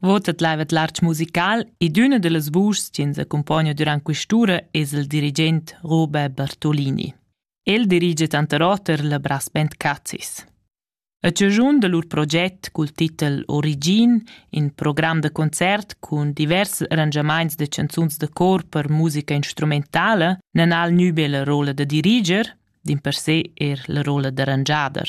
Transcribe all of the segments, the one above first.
Votet laivet l'arch musical ed üna da las vuschs chi ens accumpogna durant quist'ura es il dirigent Robert Bartolini. El dirigia tanter oter la brass band Cazis. A ciagiun da lur proget cul titel Origin, in program da concert cun divers arrangiamaints da chanzuns da cor per musica instrumentala, nan ha il nü be la rolla da diriger, dimpersè eir la rolla d'arrangiader.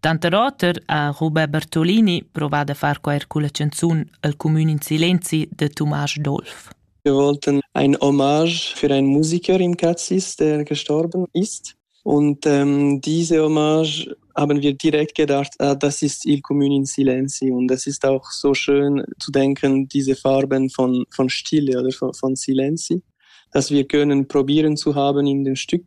Tanter oter ha Robert Bertolini provà da far quair culla chanzun El cumün in silenzi da Tumasch Dolf. Wir wollten ein Hommage für einen Musiker im Katzis, der gestorben ist. Und ähm, diese Hommage haben wir direkt gedacht, ah, das ist Il Comune in Silenzi. Und das ist auch so schön zu denken, diese Farben von, von Stille oder von, von Silenzi, dass wir können probieren zu haben in dem Stück